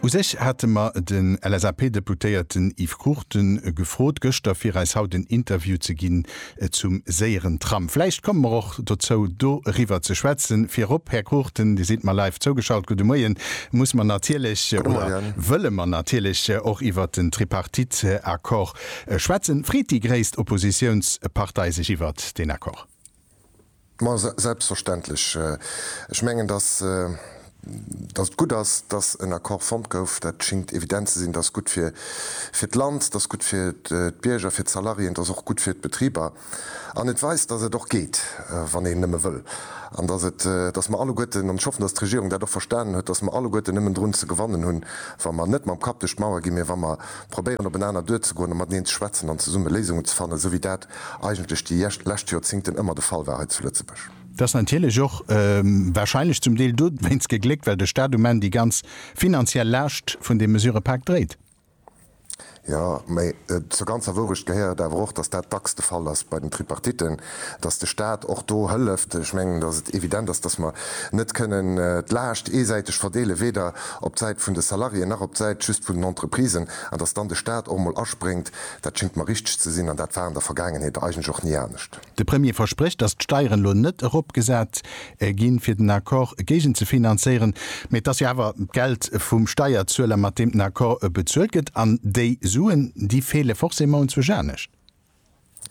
U sech hate mer den LSAP-Deputéierten Yves Cruchten gefrot gëschter, fir eis haut en Interview ze ginn zum séieren Tram. Vläicht komme mer och dozou, do eriwwer ze schwätzen. Virop, Här Cruchten, Dir sidd mer live zougeschalt, gudde Moien, muss mer natierlech oder wëlle mer natierlech och iwwert den Tripartite-Accord schwätzen. Freet déi gréisst Oppositiounspartei sech iwwert deen Accord? Ma selbstverständlech. Ech mengen, dass et gutt ass, dass en Accord fonnt gouf. Dat schéngt evident ze sinn. Dat ass gutt fir d'Land, dat ass gutt fir d'Bierger, fir d'Salariéen, dat ass och gutt fir d'Betriber. An et weist, dass et och geet, wann een nëmme wëll. An dass mer alleguerten, an ech hoffen, dass d'Regierung dat och verstanen huet, dass mer alleguerten nëmmen drun ze gewannen hunn, wa mer net mam Kapp duerch d'Mauer ginn, mä wa mer probéieren, openaner duerzegoen a mateneen ze schwätzen an zesumme Léisungen ze fannen, esou wéi dat eigentlech déi lescht Joerzingten ëmmer de Fall war hei zu Lëtzebuerg. Dat ass natierlech och warscheinlech zum Deel dowéinst gegléckt, well de Stat um Enn déi ganz finanziell Laascht vun deem Mesurëpak dréit. Jo, mä zur ganzer Wourecht gehéiert awer och, datt dat dacks de Fall ass bei den Tripartitten, datt de Stat och do hëlleft. Ech mengen, datt et evident ass, datt mer net kënnen d'Laascht eesäiteg verdeelen, weder op d'Säit vun de Salariéen nach op d'Säit just vun den Entreprisen, an datt dann de Stat och emol aspréngt, Dat schéngt mer richteg ze sinn, an dat war an der Vergaangenheet eigentlech och ni anescht. De Premier versprécht, datt d'Steieren elo net eropgesat ginn, fir den Accord géigenzefinanzéieren, mä et ass jo awer d'Geld vum Steierzueler, mat deem den Accord bezuelt gëtt, an déi Suen, déi feele forcément unzwësch anescht.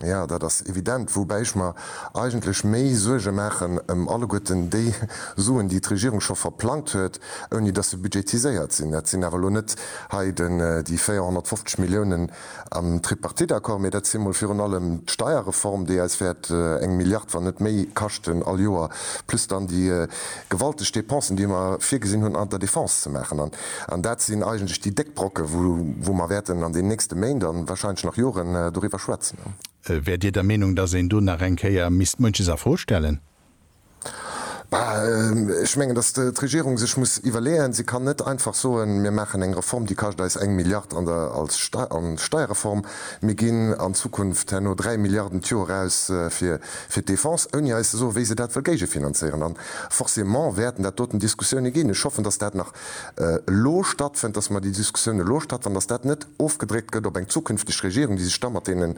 Jo, dat ass evident, woubäi ech mer eigentlech méi Suerge maachen ëm alleguerten déi Suen, déi d'Regierung scho verplangt huet, ouni dass se budgetiséiert sinn. Dat sinn awer elo net hei déi 450 Milliounen am Tripartite-Accord, mee dat si mol virun allem d'Steierreform, déi eis wäert eng Milliard, wann net méi, kaschten all Joer, plus dann déi gewalteg Dépensen, déi mer virgesinn hunn an der Defense ze maachen. An dat sinn eigentlech déi déck Brocken, wou mer wäerten an den nächste Méint a warscheinlech nach Joren doriwwer schwätzen. Wäert Dir der Meenung, dass een do nach eng Kéier misst munches a Fro stellen? Ech mengen, datt d'Regierung sech muss iwwerleeën, se kann net einfach soen, mir maachen eng Reform, déi kascht eis eng Milliard an der Steierreform, mir ginn an Zukunft herno dräi Milliarden d'Joer aus fir d'Defense, ouni eis ze soen, wéi se dat wëll géigefinanzéieren. A forcément wäerten dat doten Diskussioune ginn. Ech hoffen, datt dat nach elo stattfënnt, dass mer déi Diskussioun elo stattfann, dass dat net ofgedréckt gëtt op eng zukünfteg Regierung, déi sech da mat deenen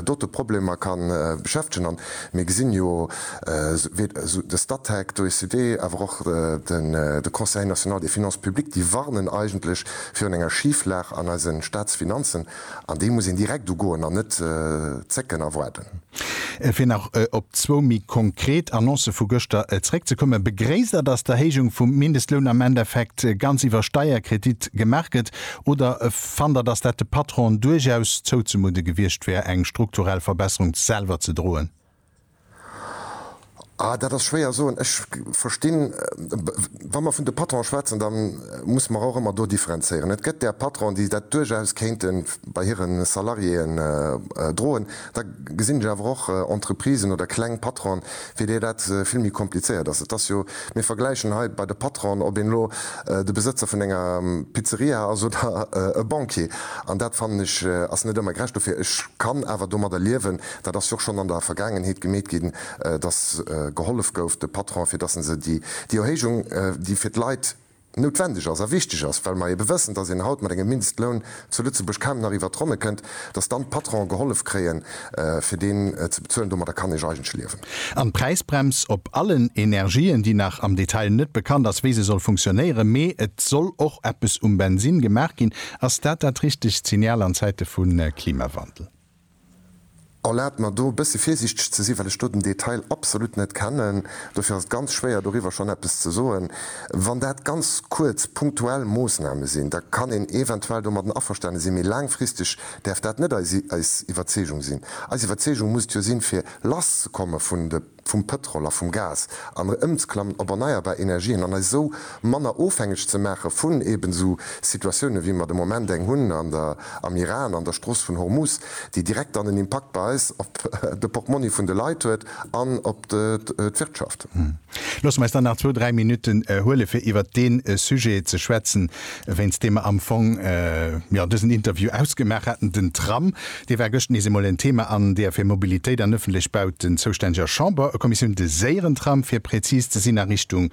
dote Problemer ka beschäftegen. A mir gesinn jo, wéi de Statec, d'OECD, awer och de Conseil national des finances publiques, déi warnen eigentlech virun enger Schieflag an eise Staatsfinanzen. An dee muss een direkt ugoen an net zécken a waarden. Fir nach op zwou méi konkret Annoncë vu gëschter zréckzekommen, Begréisst Der, datt d'Erhéijung vum Mindestloun am Endeffekt ganz iwwer Steierkredit gemaach gëtt oder fannt Der, datt dat de Patronen duerchaus zouzemudde gewiescht wär, eng strukturell Verbesserung selwer ze droen? Ah, dat ass schwéier soen. Ech verstinn, wa mer vun de Patronen schwätzen, da musse mer och ëmmer do differenzéieren. Et gëtt där Patronen, déi dat duerchaus kéinte bei hire Salariéen droen. Da gesinn ech awer och Entreprisen oder kleng Patronen, fir déi dat vill méi komplizéiert ass. Et ass jo, mir vergläichen hei bei de Patronen, ob een elo de Besëtzer vun enger Pizzeria ass oder e Banquier. An dat, fannen ech, ass net ëmmer gerecht. Dofir, ech kann awer domadder liewen, Dat ass jo schonn an der Vergaangenheet gemeet ginn, dass gehollef gouf de Patronen, fir dass se déi Erhéijung, déi fir d'Leit noutwendeg ass a wichteg ass, well mer eebe wëssen, dass een haut mat engem Mindestloun zu Lëtzebuerg kaum nach iwwert d'Ronne kënnt, dass dann d'Patronen gehollef kréien, fir deen ze bezuelen. Domadder kann ee eigentlech liewen. An d'Präisbrems op allen Energien, déi nach am Detail net bekannt ass, wéi se soll funktionéieren, mee et soll och eppes um Bensinn gemaach ginn, ass dat dat richtegt Signal an Zäite vu Klimawandel? Erlaabt mer do e bësse virsiichteg ze sinn, well ech do den Detail absolut net kennen, dofir ass et ganz schwéier doriwwer schonn eppes ze soen. Wann dat ganz kuerz punktuell Moosname sinn, da kann een eventuell domadden averstane sinn, mee laangfristeg däerf dat net eis Iwwerzeegung sinn. Eis Iwwerzeegung muss et jo sinn, fir lass ze komme vun de. vum Pëtrol a vum Gas an ëmzklammen op erneierbar Energien an eis esou manner ofhängeg ze maache vun eben esou Situatiounen, wéi mer de Moment eng hunn am Iran an der Strooss vun Hormuz, déi direkt dann en Impakt bei eis op de Portmonni vun de Leit huet an op d'Wirtschaft. Loosse mer eis dann nach zwou, dräi Minutten huele fir iwwert dee Sujet ze schwätzen. wéinst deem mer am Fong jo dësen Interview ausgemaach haten. Den Tram, dee war gëscht nees eemol en Thema an deer fir Mobilitéit an ëffentlech Bauten zoustänneger Chamberkommissioun, de Séierentram, fir präzis ze sinn, a Richtung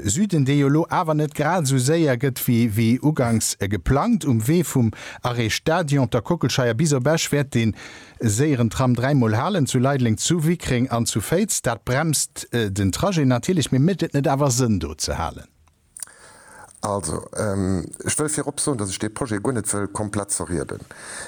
Süden, dee jo elo awer net grad esou séier gëtt wéi uganks geplangt. Um Wee vum Arrêt Stadion, der Kockelscheier bis op Esch wäert dee Séierentram dräimol halen, zu Leideleng, zu Wickreng an zu Féiz. Dat bremst den Trajet natierlech, mee mécht et net awer Sënn, do ze halen? Also, ech wëll virop soen, dass ech dee Projet guer net wëll komplett zerrieden,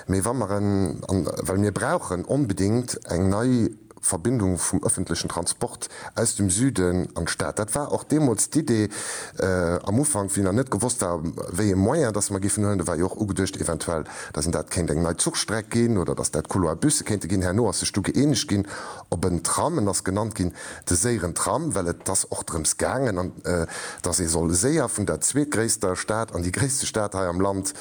mee wa mer en, an well mir brauchen onbedéngt eng nei Verbindung vum öffentlichen Transport aus dem Süden an d'Stad, dat war och deemools d'Idee am Ufank, wéi nach net gewosst war, wéi ee Moyen dass mer géifen huelen, do war jo och ugeduecht eventuell, dass een dat kéint eng nei Zuchstreck ginn oder dass dat Couloir-Busse kéinte ginn. Herno ass sech du gëeenegt ginn op en Tram, en ass genannt ginn De séieren Tram, well et ass och drëms gaangen, dass ee soll séier vun der zweetgréisster Stad an déi gréisste Stad hei am Land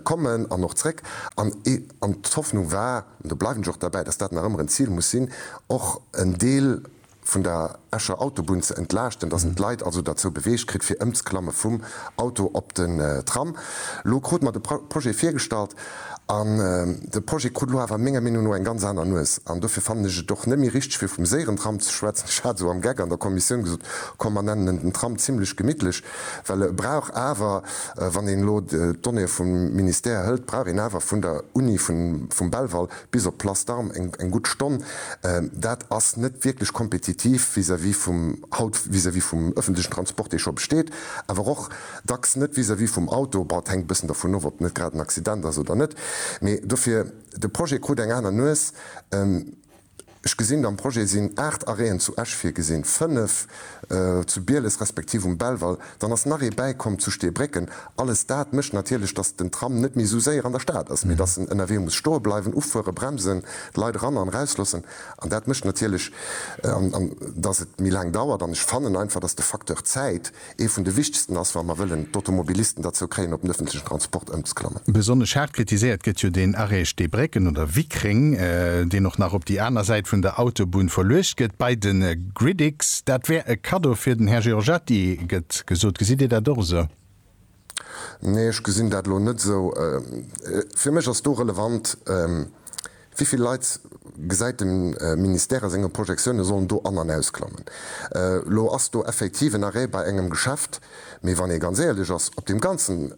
kommen an och zréck. An d'Hoffnung war, an do bleiwen ech och derbäi, dass dat nach ëmmer en Zil muss sinn, och en Deel vun der Escher Autobunn ze entlaaschten, dass en d'Leit also derzou beweegt kritt, fir ëmzeklamme vum Auto op den Tram. Elo krute mer de Projet virgestallt. An de Projet krut elo awer menger Meenung no eng ganz aner Nues. An dofir fannen ech et och net méi richteg, fir vum séieren Tram ze schwätzen. Ech hat esou am Geck an der Kommissioun gesot, Komm, mer nennen en den Tram zimlech gemittlech, well e brauch awer, wann een elo d'Donnéeë vum Ministère hëlt, brauch een awer vun der Uni, vum Belval bis op d'Place d'Armes eng gutt Stonn. Dat ass net wierklech kompetitiv vis-à-vis vum, haut vis-à-vis vum öffentlichen Transport, dee scho besteet, awer och Dacks net vis-à-vis vum Auto, bon et hänkt e bëssen dovun of, ob net grad en Accident ass oder net, mee dofir, de Projet krut eng aner Nues. Ech gesinn, am Projet sinn 8 Arrêten zu Esch virgesinn, 5 zu Bieles respektiv um Belval, dann ass nach ee bäikomm zu Steebrécken. Alles dat mécht natierlech, dass den Tram net méi esou séier an der Stad ass, mee dass en ënnerwee muss stoe bleiwen, ufueren, bremsen, d'Leit eran an erauslossen an dat mécht natierlech, dass et méi laang dauert an ech fannen einfach, dass de Facteur Zäit, Ee vun de wichtegsten ass, wa mer wëllen d'Automobilisten derzou kréien, op den öffentlichen Transport ëmzeklammen. Besonnesch haart kritiséiert gëtt jo deen Arrêt Steebrécken oder Wickreng, deen och nach op déi aner Säit vun der Autobunn verluecht gëtt, bei de Gridix. Dat wär e Kaddo fir den Här Giorgetti, gëtt gesot. Gesitt Dir dat och esou? Nee, ech gesinn dat elo net esou. Fir mech ass do relevant, wéi vill Leit gesäit de Ministère a senge Projektiounen sollen do an an ausklammen. Elo ass do effektiv en Arrêt bei engem Geschäft, mee wann ee ganz éierlech ass, op deem ganzen,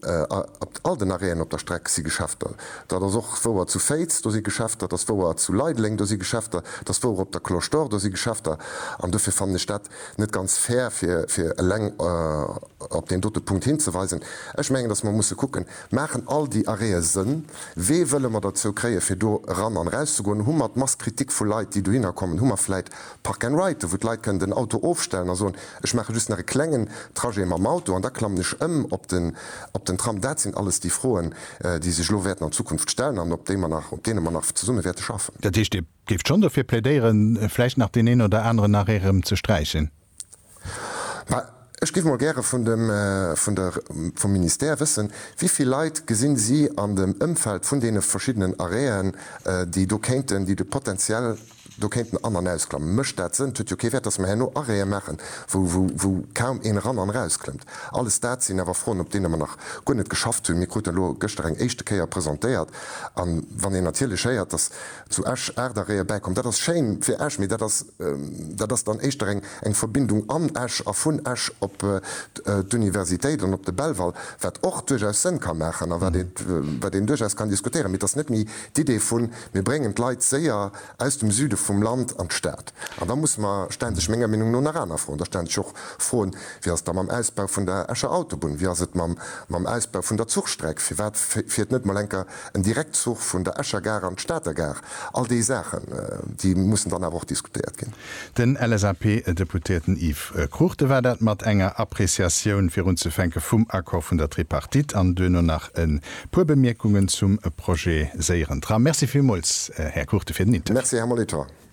op all den Arrêten op der Streck si Geschäfter. Dat ass och wouer zu Féiz, do si Geschäfter, dat ass wouer zu Leideleng, do si Geschäfter, dat ass wouer op der Cloche d'Or, do si Geschäfter. An dofir fannen ech dat net ganz fair, fir eleng op deen dote Punkt hinzeweisen. Ech mengen, datt mer musse kucken, Maachen all déi Arrêtë Sënn? Wee wëlle mer derzou kréien, fir do eran an eraus ze goen? Hu mer d'Mass Kritik vu Leit, déi dohinner kommen? Hu mer vläit Park and Ride, wou d'Leit kënnen den Auto ofstellen a soen, Ech maache just nach e klengen Trajet mam Auto an da klammen ech ëm op den Tram? Dat sinn alles déi Froen, déi sech elo wäerten an Zukunft stellen an op deene mer nach zesumme wäerte schaffen. Dat heescht, Dir Géift schonn dofir plädéieren, vläicht nach deen een oder aneren nach erëm ze sträichen. Mä ech géif mol gäre vun dem, vun der, vum Ministère wëssen, wéi vill Leit gesinn si an dem Ëmfeld vun deene verschiddenen Arrêten, déi do kéinten, déi do potenziell do kéinten an an ausklammen? Mécht dat Sënn? Et huet jo kee Wäert, dass mer herno Arrêten maachen, wou, wou, wou kaum een eran an erausklëmmt. Alles dat sinn awer Froen, op deene mer nach guer net geschafft hunn. Mir kruten elo gëschter eng éischte Kéier presentéiert. A wann een natierlech héiert, dass Zu Esch, Aart a Réier bäikomm. Dat ass schéin fir Esch, mee dat ass dat ass dann éischter eng eng Verbindung an Esch a vun Esch op d'Universitéit an op de Belval, wat och duerchaus Sënn ka maachen a wat ee wat een duerchaus kann diskutéieren. Mee et ass net méi d'Idee vu mir bréngen d'Leit séier aus dem Süde vum Land an d'Stad. An da musse mer, stellen sech menger Meenung no nach aner Froen. Da stellen sech och Froen, wéi ass et da mam Ausbau vun der Escher Autobunn, wéi ass et mam mam Ausbau vun der Zuchstreck, firwat fiert net mol enker en Direktzuch vun der Escher Gare an d'Stater Gare, all déi Saachen, déi mussen dann awer och diskutéiert ginn. Den LSAP-Deputéierten Yves Cruchten war dat mat enger Appréciatioun virunzefänke vum Accord vun der Tripartite an duerno nach e puer Bemierkungen zum Projet Séieren Tram. Merci villmools, Här Cruchten, fir den Interview. Merci, Här Molitor.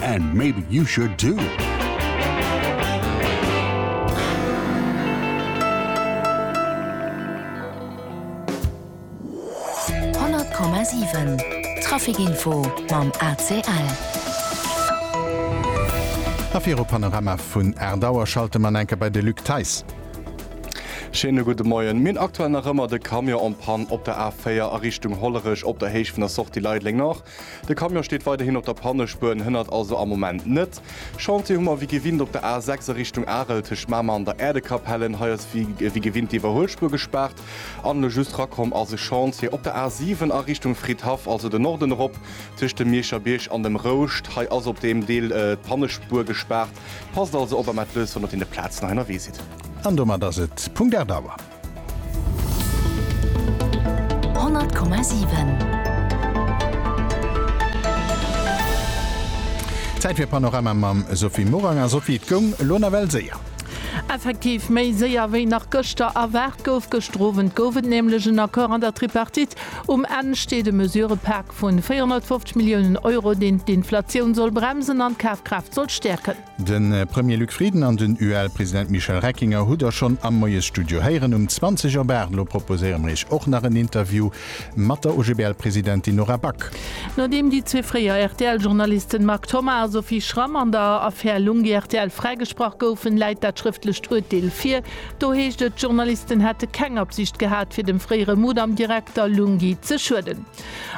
And maybe you should too! Trafficinfo mam ACL A fir op Panorama vun Erdauer schalte man enke bei de Luc Theis. Scheene gudde Moien. Minn aktuell nach ëmmer de Camion en panne op der A4 a Richtung Hollerech op der Héicht vun der Sortie Leideleng Nord. De Camion steet weiderhin op der Pannespuer, hënnert also am Moment net. Chantier hu mer wéi gewinnt op der A 6 a Richtung Arel tëscht Mamer an der Äerdekapellen. Hei ass wéi gewinnt d'Iwwerhuelspuer gespaart. An elo just rakomm ass e Chantier op der A 7 a Richtung Fridhaff, also de Norden erop tëscht dem Mierscher Bierg an dem Rouscht. Hei ass op deem Deel d'Pannespuer gespaart. Passt also op a mellt lous, wann der deen de Plazen hei ënnerwee sidd. An domat ass et Punkt 8 Auer. Zäit fir Panorama mam Sophie Morang. A Sophie, et goung elo nawell séier. Effektiv, méi séier wéi nach gëschter erwaart gouf. Gëschter Owend gouf et nämlech en Accord an der Tripartite. Um Enn steet e Mesurëpak vun 450 Milliounen Euro, deen d'Inflatioun soll bremsen an d'Kafkraaft soll stäerken. De Premier Luc Frieden an den UEL-President Michel Reckinger hutt Der schonn am Moiesstudio héieren. Um 20 op 8 elo proposéiere mir Iech och nach en Interview mat der OGBL-Presidentin Nora Back. Nodeem déi zwee fréier RTL-Journalisten Marc Thomas a Sophie Schramm an der Affär Lunghi rtl fräigesprach goufen, läit dat schrëftlecht Urteel vir. Do heescht et, d'Journalisten hätte keng Absicht gehat, fir dem fréiere Mudam-Direkter Lunghi ze schueden.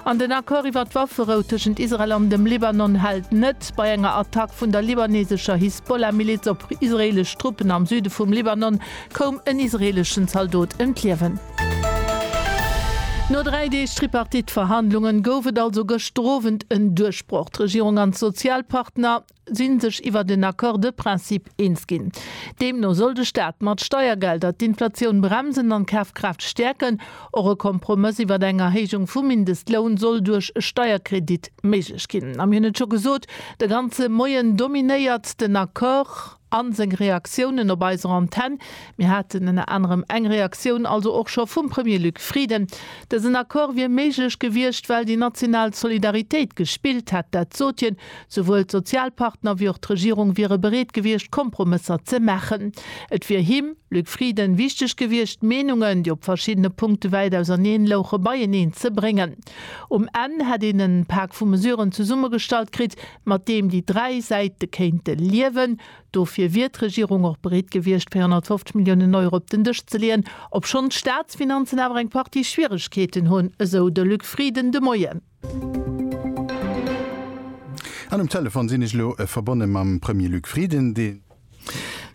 An den Accord iwwer d'Wafferou tëschent Israel an dem Libanon hält net. Bei enger Attack vun der libanesescher Hisbollah-Miliz op israeelesch Truppen am Süde vum Libanon koum en israeeleschen Zaldot ëm d'Liewen. No dräi Deeg Tripartite-Verhandlungen gouf et also gëschter Owend en Duerchbroch. D'Regierung an d'Sozialpartner, si sech iwwer den Accord de principe eens ginn. Deemno soll de Staat mat Steiergelder d'Inflatioun bremsen an d'Kafkraaft stäerken. Och e Kompromëss iwwer eng Erhéijung vum Mindestloun soll duerch e Steierkredit méiglech ginn. A mir hunn et scho gesot, de ganze Moien dominéiert den Accord a seng Reaktiounen op eiser Antenn. Mir haten ënner anerem eng Reaktioun also och scho vum Premier Luc Frieden. Dësen Accord wier méiglech gewiescht, well déi national Solidaritéit gespillt hätt. Dat sot hien Souwuel d'Sozialpartner wéi och d'Regierung wiere bereet gewiescht, Kompromësser ze maachen. Et wier him, Luc Frieden, wichteg gewiescht, d'Meenungen, déi op verschiddene Punkte wäit auserneen louche, beieneen ze bréngen. Um Enn hätt een en Pak vu Mesuren zesummegestallt kritt, mat deem déi dräi Säite kéinte liewen. Dofir wier d'Regierung och bereet gewiescht, 450 Milliounen Euro op den Dësch ze leeën, obschonn d'Staatsfinanzen awer eng Partie Schwieregkeeten hunn, esou de Luc Frieden de Moien. An um Telefon sinn ech elo verbonne mam Premier Luc Frieden, dee.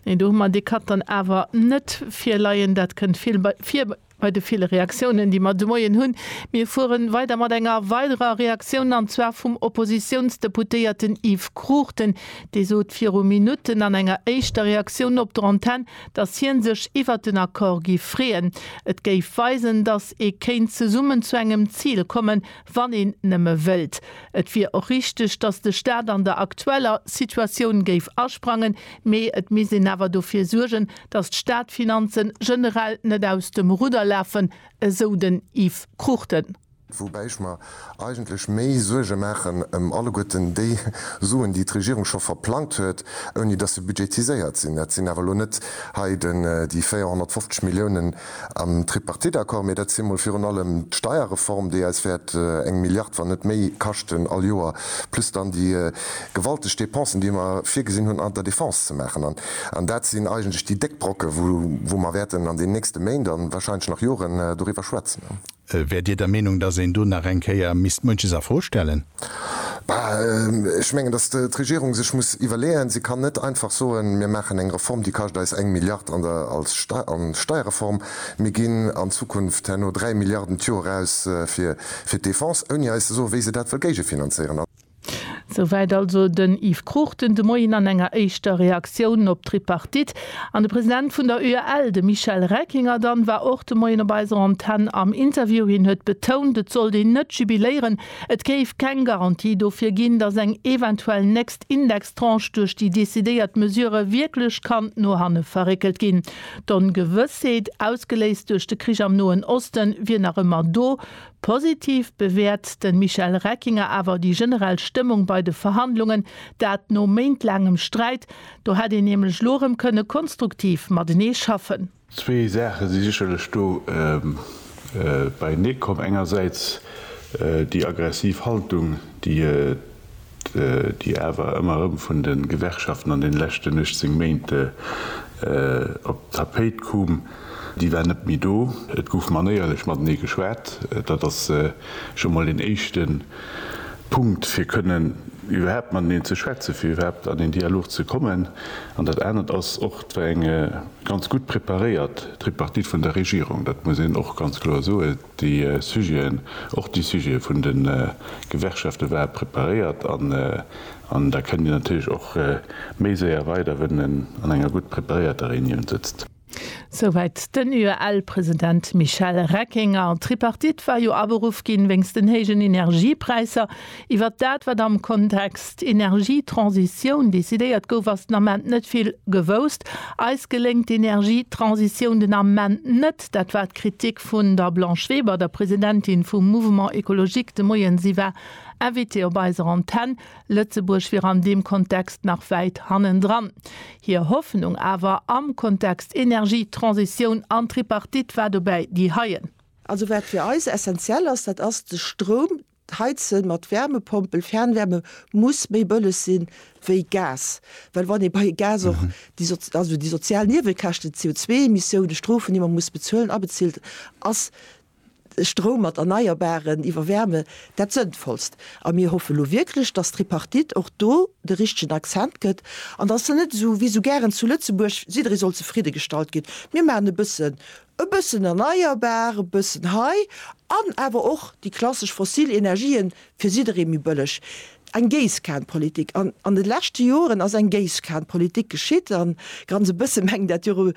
Nee, do hu mer dee Cut dann awer net virleien. Dat kënnt vill vir bei de ville Reaktiounen, déi mer de Moien hunn. Mir fuere weider mat enger weiderer Reaktioun, an zwar vum Oppositiounsdeputéierten Yves Cruchten. Dee sot viru Minutten an enger éischter Reaktioun op der Antenn, datt hien sech iwwert den Accord géif freeën, et géif weisen, datt ee kéint zesummen zu engem Zil kommen, wann een nëmme wëllt. Et wier och richteg, datt de Staat an der aktueller Situatioun géif asprangen, mee et misst een awer dofir suergen, datt d'Staatfinanze generell net aus dem Rudder lafen, esou den Yves Cruchten. Woubäi ech mer eigentlech méi Suerge maachen ëm alleguerten déi Suen, déi d'Regierung scho verplangt huet, ouni dass se budgetiséiert sinn. Dat sinn awer elo net hei déi 450 Milliounen am Tripartite-Accord, mee dat si mol virun allem d'Steierreform, déi eis wäert eng Milliard, wann net méi, kaschten all Joer, plus dann déi gewalteg Dépensen, déi mer virgesinn hunn an der Defense ze maachen. An dat sinn eigentlech déi déck Brocken, wou mer wäerten an den nächste Méint a wahrscheinlech nach Joren doriwwer schwätzen. Wäert Dir der Meenung, datt een do nach eng Kéier misst munches a Fro stellen? Bah, ech mengen, datt d'Regierung sech muss iwwerleeën, se kann net einfach soen, mir maachen eng Reform, déi kascht eis eng Milliard an der Steierreform, mir ginn an Zukunft herno dräi Milliarden d'Joer aus fir d'Defense, ouni eis ze soen, wéi se dat wëll géigefinanzéieren. Souwäit also den Yves Cruchten de Moien an enger éischter Reaktioun op d'Tripartite. An de President vun der UEL, de Michel Reckinger dann, war och de Moien op eiser Antenn am Interview. Hien huet betount, et sollt een net jubiléieren, et géif keng Garantie dofir ginn, datt eng eventuell nächst Indextranche duerch déi decidéiert Mesure wierklech kann no hanne verréckelt ginn. D'Ongewëssheet, ausgeléist duerch de Krich am Noen Osten, wier nach ëmmer do. Positiv bewäert de Michel Reckinger awer déi generell Stëmmung bei de Verhandlungen, dat no méintlaangem Sträit. Do hätt een nämlech elo erëm kënne konstruktiv matenee schaffen. Zwee Saache si sécherlech do beienee komm. Engersäits déi aggressiv Haltung, déi déi awer ëmmer erëm vun de Gewerkschaften an den leschten 18 Méint op d'Tapéit koom, déi war net méi do. Et gouf manéierlech matenee geschwat. Dat ass scho emol een éischte Punkt, fir kënnen iwwerhaapt mateneen ze schwätzen, fir iwwerhaapt an een Dialog ze kommen. An dat anert ass och, et war eng ganz gutt preparéiert Tripartite vun der Regierung. Dat muss een och ganz kloer soen. Déi Sujeten, och déi Sujete vun de Gewerkschafte ware preparéiert an da kënnt Dir natierlech och méi séier weider, wann en an enger gutt preparéierter Reunioun sëtzt. Souwäit den UEL-President Michel Reckinger. D'Tripartite war jo aberuff ginn, wéinst den héijen Energiepräisser. Iwwert dat, wat am Kontext Energietransitioun decidéiert gouf, ass den Ament net vill gewousst. Eis geléngt d'Energietransitioun den Ament net. Dat war d'Kritik vun der Blanche Weber, der Presidentin vum Mouvement Ecologique, de Moien. Si war Invitée op eiser Antenn. Lëtzebuerg wier an deem Kontext nach wäit hannendran. Hir Hoffnung awer am Kontext Energie, Transitioun an Tripartite war dobäi déi heien. Also wat fir eis essenziell ass, dat ass de Stroum. D'Heizen mat Wärmepompel, Fernwärme, muss méi bëlleg si wéi Gas. Well wann ee bei Gas och déi, also déi sozial Niewekäschten, d'CO2-Emissiounen, d'Strofen, déi mer muss bezuelen, abezilt, ass Stroum mat Erneierbaren iwwer Wärme dat Sënnvollst. A mir hoffe lo wierklech, dass d'Tripartite och do de richtegen Accent gëtt an dass se net esou, wéi esou gären zu Lëtzebuerg, jidderee soll zefridde gestallt ginn, mir maachen e bësse E bëssen erneierbar, e bëssen hei an awer och déi klassesch fossil Energien, fir jidderee méi bëlleg. Eng Géisskanpolitik. An an de leschte Joren ass eng Géisskanpolitik geschitt. A ganz e bësse mengen dat jo erëm,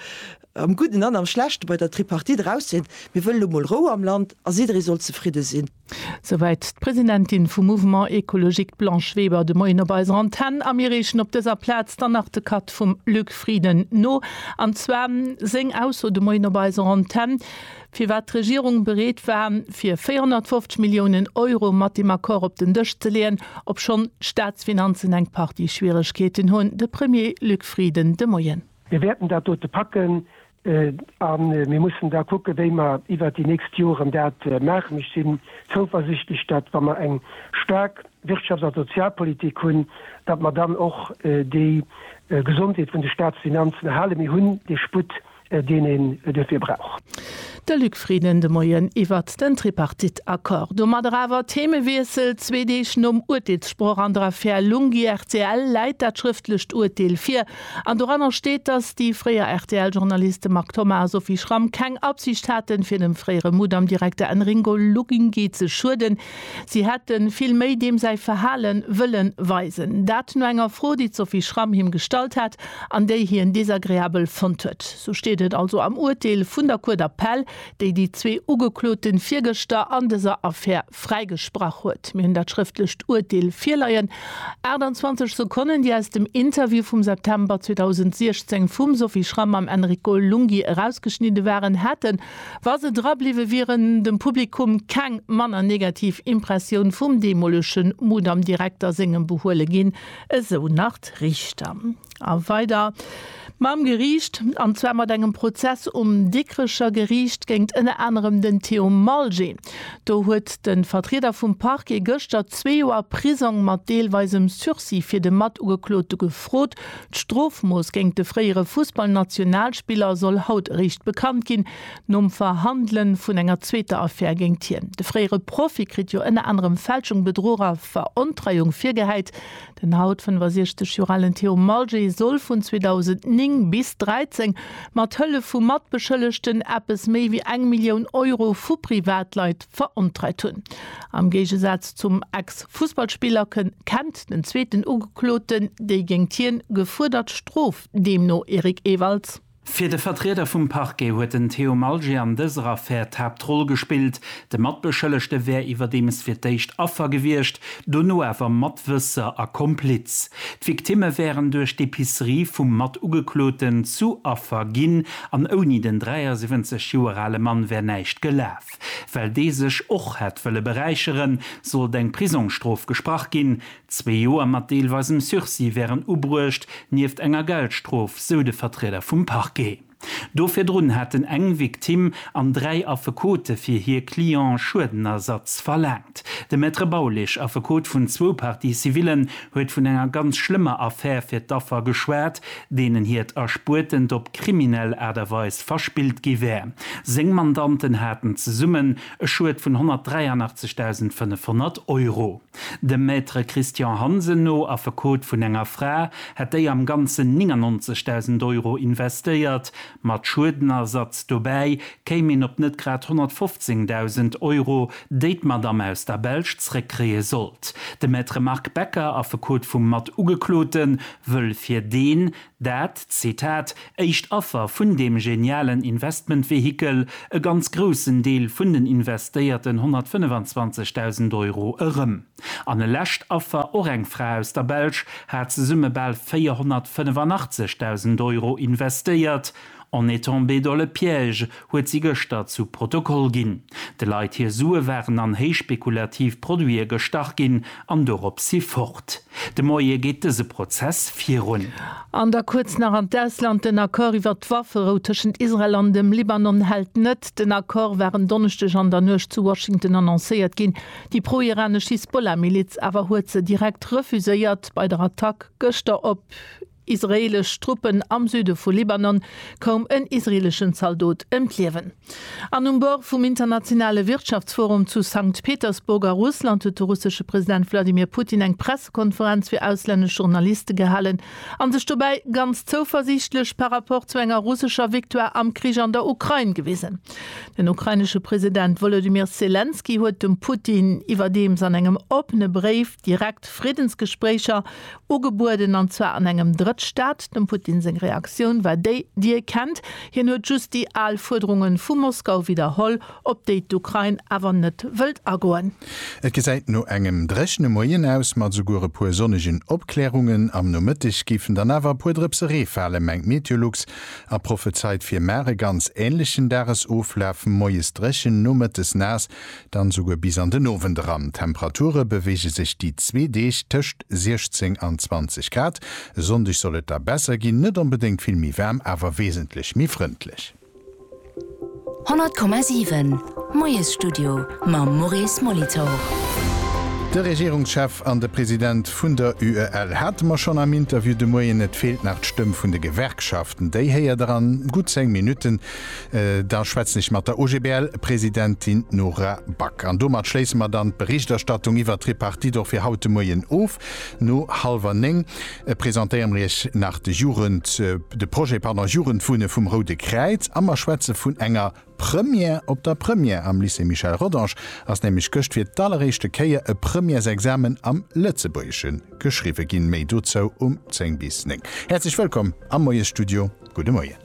am Gudden an am Schlechte, bei der Tripartite erauszehéieren, Mir wëllen elo mol Rou am Land a jidderee soll zefridde sinn. Souwäit d'Presidentin vum Mouvement Ecologique Blanche Weber de Moien op eiser Antenn. A mir reechen op dëser Plaz dann nach de Cut vum Luc Frieden no, an zwar seng Ausso de Moien op eiser Antenn, firwat d'Regierung bereet war fir 450 Milliounen Euro mat deem Accord op den Dësch ze leeën, obschonn d'Staatsfinanzen eng Partie Schwieregkeeten hunn. De Premier Luc Frieden de Moien. Mir wäerten dat dote packen, A mir mussen da kucken, wéi mer iwwert déi nächst Joren dat maachen. Ech sinn zouversichtlech, datt, wa mer eng staark Wirtschafts a Sozialpolitik hunn, datt mer dann och déi Gesondheet vun de Staatsfinanzen erhalen. Mir hunn dee Sputt, deen een duerfir brauch. De Luc Frieden de Moien iwwert den Tripartite-Accord. Domadder awer Themewiessel, Zwee Deeg nom Urteelssproch an der Affär Lunghi-RTL läit dat schrëftlecht Urteel vir. An doranner steet, dass déi fréier RTL-Journaliste Marc Thomas a Sophie Schramm keng Absicht haten, fir dem fréiere Mudam-Direkter Enringo Luginghi ze schueden. Si hätte vill méi deem säi Verhale wëlle weisen. Dat no enger Fro, déi d'Sophie Schramm him gestallt hat an déi hien desagreabel fonnt huet. Sou steet et also am Urteel vun der Cour d'appel, déi déi zwee Ugeklote virgëschter an dëser Affär fräigesprach huet. Mir hunn dat schrëftlecht Urteel virleien, 28 Sekonnen, déi aus dem Interview vum September 2016 vum Sophie Schram mam Enrico Lunghi erausgeschnidde waren, hätten, wa se drabliwwe wieren, dem Publikum keng manner negativ Impressioun vum deemolege Mudam-Direkter sengem behuele ginn, esou nach d'Richter. A weider mam Geriicht, an zwar mat engem Prozess um Dikrecher Geriicht géingt ënner anerem den Theo Malgé. Do huet de Vertrieder vum Parquet gëschter zwee Joer Prisong mat deelweisem Sursis fir de Matugeklote gefrot. D'Strofmooss géingt de fréiere Fussballnationalspiller soll haut eréischt bekannt ginn, nom Verhandele vun enger zweeter Affär géingt hien. De fréiere Profi kritt jo ënner anerem Fälschung, Bedruch a Verontreiung virgehäit. Den haut 65 Joer alen Theo Malgé soll vun 2009 bis 13 mat Hëllef vu Matbeschëllegten eppes méi wéi eng Millioun Euro vu Privatleit verontreit hunn. Am Géigesaz zum Ex-Fussballspiller kënn kennt den zweeten Ugekloten déi géingt hien gefuerdert Strof, deemno Eric Ewalds. Fir de Vertrieder vum Parquet huet den Theo Malger an dëser Affär d'Haaptroll gespillt. De Matbeschëllegte wär iwwerdeems fir d'éischt Affer gewiescht, dono awer Matwësser a Kompliz. D'Victimme wären duerch d'Epicerie vum Matugekloten zu Affer ginn an ouni den 73 Joer ale Mann wär näischt gelaf. Well dee sech och hätt wëlle beräicheren, sollt eng Prisongsstrof gesprach ginn, Zwee Joer mat deelweisem Sursis wären ubruecht, nieft enger Geldstrof, sou de Vertrieder vum Parquet. Do virdrun hätten eng Victime an dräi Affekote fir hir Client Schuedenersatz verlaangt. De Maître Baulig, Affekot vun zwou Parties civillen, huet vun enger ganz schlëmmer Affär fir d'Affer geschwat, deenen hiert Erspuertent op kriminell Aart a Weis verspillt gi wär. Seng Mandanten haten zesummen e Schued vun 183.500 Euro. Dem Maître Christian Hansen no, Affekot vun enger Fra, hätt déi am Ganzen 99.000 Euro investéiert. Mat Schuedenersatz dobäi kéim een op net grad 115.000 Euro, déi d'Madame aus der Belsch zréckkréie sollt. De Maître Marc Becker, Affekot vum Mat-Ugeklote, wëll fir deen, Dat, Zitat, éischt Affer vun deem genialen Investmentvehikel, e ganz groussen Deel vun den investéierten 125.000 Euro erëm. An e lescht Affer, och eng Fra aus der Belsch, hat zesumme bal 485.000 Euro investéiert. On est tombé dans le piège, huet si gëschter zu Protokoll ginn. De Leit hir Sue waren an héichspekulativ Produite gestach ginn an dorop si fort. De Moie geet dëse Prozess virun. An da kuerz nach an d'Ausland, Den Accord iwwert d'Wafferou tëschent Israel an dem Libanon hält net. Den Accord war en Donneschdeg an der Nuecht zu Washington annoncéiert ginn. Déi pro-iranesch Hisbollah-Miliz awer huet se direkt refuséiert. Bei der Attack gëschter op. Israeelesch Truppen am Süde vu Libanon, koum en israeeleschen Zaldot ëm d'Liewen. An um Bord vum internationale Wirtschaftsforum zu Sankt Petersburg a Russland huet de russesche President Wladimir Putin eng Pressekonferenz fir auslännesch Journaliste gehalen a sech dobäi ganz zouversiichtlech par rapport zu enger russescher Victoire am Krich an der Ukrain gewisen. Den ukrainesche President Wolodymyr Selenskyj huet dem Putin iwwerdeems an engem oppene Bréif, Direkt Friddensgespréicher ugebueden, an zwar an engem Drëttstaat. Dem Putin seng Reaktioun war déi, déi ee kennt. Hien huet just déi al Fuerderunge vu Moskau widderholl, op déi d'Ukrain awer net wëllt agoen. Et gesäit no engem dréchene Moien aus, mat esouguer e puer sonnegen Opklärungen. Am Nomëtteg géifen dann awer e puer Drëpse Ree falen, mengt Meteolux a prophezeit fir mar e ganz änlechen Dagesoflaf, Moies dréchen, nomëttes naass. Dann souguer bis an den Owend eran. D'Temperature beweege sech déi zwee Deeg tëscht 16 an 20 Grad. E Sonndeg soll et da besser ginn, net onbedéngt vill méi waarm, awer wesentlech méi frëndlech. 100,7, Moiesstudio mam Maurice Molitor. De Regierungschef an de President vun der UEL hate mer schonn am Interview de Moien. Et feelt nach d'Stëmm vun de Gewerkschaften. Déi héiert der an gutt 10 Minutten. Da schwätzen ech mat der OGBL-Presidentin Nora Back. An domat schléisse mer dann d'Berichterstattung iwwert d'Tripartite och fir haut de Moien of. No hallwer néng presentéiere mer Iech nach de Jugend, de Projet, pardon, Jugendwunne vum Roude Kräiz a mer schwätze vun enger Première op der Première. Am Lycée Michel Rodange ass nämlech gëscht fir d'alleréischte Kéier e Premièresexamen am Lëtzebuergesche geschriwwe ginn. Méi dozou um zéng bis néng. Häerzlech wëllkomm am Moiesstudio. Gudde Moien.